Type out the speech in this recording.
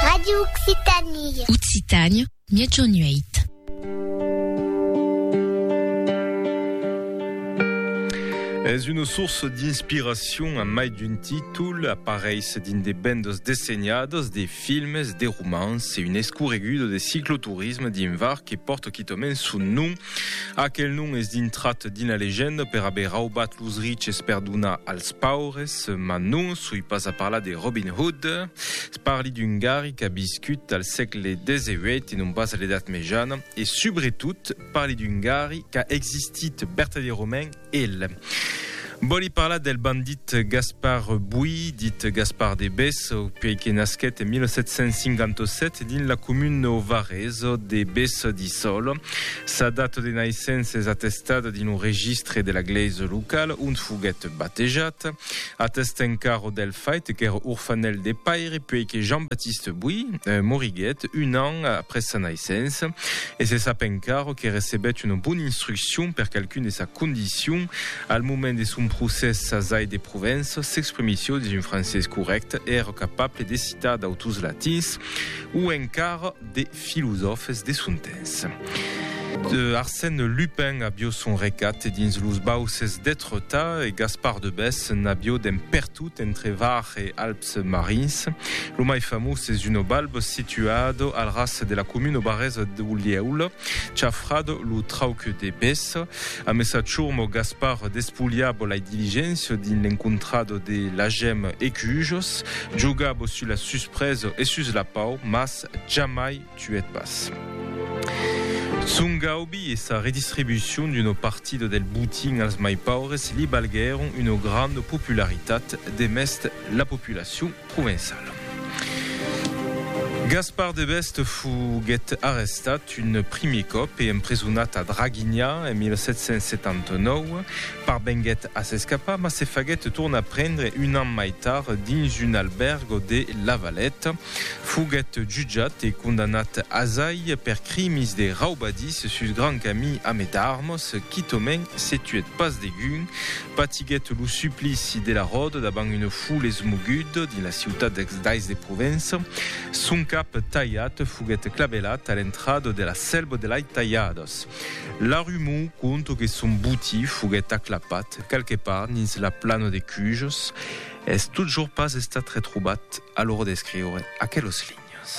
Radio Occitanie. Occitània, Miègjorn 8. Es una source d'inspiracion a mai d'un títol, apareis dins de bandas dessenhadas, de filmes, de romans e un escorregudo de cicloturisme dins var que pòrta quitament son nom. Aquel nom es dintrat d'ina legenda per aver raubat los riches per donar als paures, mas non soi pas a parlar de Robin Hood. Parli d'un gari qu'a viscut al sègle XVIII e non pas a l'Edat Mejana e subretot parli d'un gari qu'a existit vertadièrament El vòli parlar del bandit Gaspar Bui, dit Gaspar de Bes, puèi que nasquèt en 1757 dins la comuna o varèsa de Bes di Sòl. Sa data de naissença es atestada dins lo registre de la glèisa locala ont foguèt batejat. Atèsta encara del fait qu'èra orfanèl de paire puèi que Jean-Baptiste Bui moriguèt un an après sa naissença. E se sap encara que recebèt una bona instruccion per qualqu'un de sa condicion. Al moment de son procès s'asai de Provença, s'exprimissió dins un francés corrècte e èra capable de citar d'autors latins o encara de filosòfes de son temps. Arsène Lupin avió son recat dins los bauses d'Étretat e Gaspard de Bès n'avió d'en pertot entre Var e Alps. Marins. Lo mai famós es un balb situat al ras de la comuna barresa d'Olieula, chafrat lo trauc de Bes. A messa churm, Gaspar despulhab lai diligéncia dins l'encontrat de lagem e cujos, jogab sus la suspresa e sus la pau, mas jamai tuèt pas son gaubi e sa redistribucion d'una partida del botin als mai paures li balguèron una granda popularitat demest la populacion provençala. Gaspar de Best foguèt arrestat un primièr còp e empresonat a Draguinha en 1779. Parvenguèt a s'escapar mas se faguèt tornar prendre un an mai tard dins un albèrg de La Valeta. Foguèt jutjat e condanat azai per crimis de raubadís sus Grand Camí ame d'armos, quitòment se tuèt pas degun. Patiguèt lo suplici de la ròda davant una foule esmoguda dins la ciutat d'Ais de Provença. Son cap talhat foguèt clavelat a l'entrada de la Selva de Lai Talhadas. La rumor conta que son botí foguèt aclapat quelque part dins la plana de Cujos. Es totjorn pas estat retrobat a l'ora d'escriure aquelos linhas.